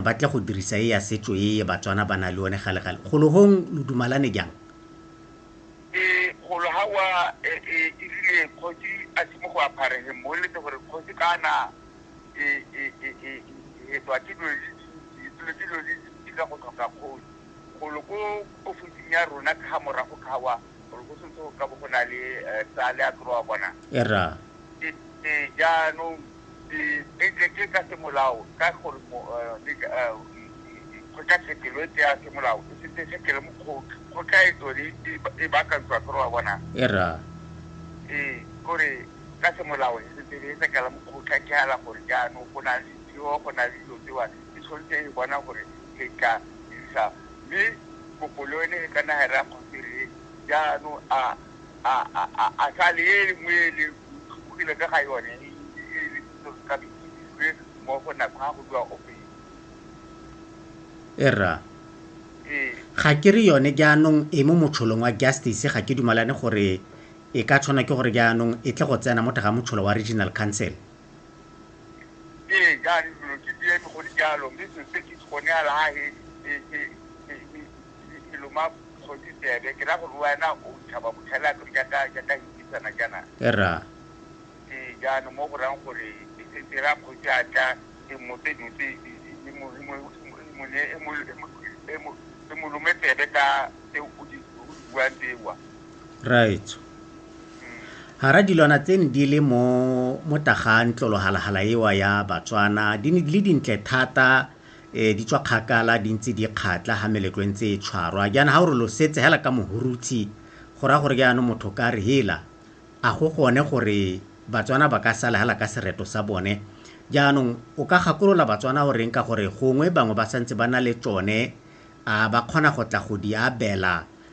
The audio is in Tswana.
Ba tle go dirisa e ya setso e Batswana ba na le one gale gale. Golo hong lo dumalane jang? E, golo ha wa e, e, e rile kgosi a se mo go apare he mo eletse gore kgosi kana e, e, e, e, e hetwa ke dilo di dintsi, dilo ke dilo di dintsi ka go tlhoka kgosi. Golo ko ofising ya rona ka ha morago ka wa gore go setse go ka bo go na le eh, tsa le a tlo wa bona. E ra. E, e, jaanong di betletswe ka semolao ka gore mo go ka sekelo e tseya semolao e setse sekelo mo kgotla go ka e tsone e bakantswa gore wa bona era ee gore ka semolao e setse e sekela mo kgotla ke hala gore jaanong go na le ditheo go na le dilo tsewa e tshwanetse e bona gore ke ka isa mme kopolo ene e ka nagara kgotsi re jaanong a A, a, a, a sa le e nngwe e le tlhobogile ka ga yone e e lebisitsweng ka boitsibilwe mo go nako ga go bua ope yo? Ee, rra. Ee. Ga ke re yone jaanong e mo motsholong wa Justice, ga ke dumalane gore e ka tshwanwa ke gore jaanong e tle go tsena mo teng ga motshola wa Regional Council. Ee, ka re dilo ke dieme go le jalo, mme selo se ke itse gone ya lahe e loma kgontsi tsebe ke ra gore wena o tshaba botlhela kere jaaka jaaka hikisana jaana ra ee jaanong mo go rang gore e setse ra kgotsi a tla e mmotse dilo tse e- e- e mo- e mo- e mo- e mo ne- e mo- e mo- e mo- e mo lome tsebe ka tse o di o di buang tsewa raetso Hara dilwana tse ne di le mo mo tagang tlolohalahala ewa ya Batswana di ne di le dintle thata eh, di tswa kgakala di ntse di kgatla ha meletlo e ntse e tshwarwa jaana ha o re lo setse hela ka mohurutshi go raya gore jaanong motho ka re hela a go gone gore Batswana ba ka sala hela ka sereto sa bone jaanong o ka gakolola Batswana o reng ka gore gongwe bangwe ba santse ba na le tsone a ba kgona go tla go di abela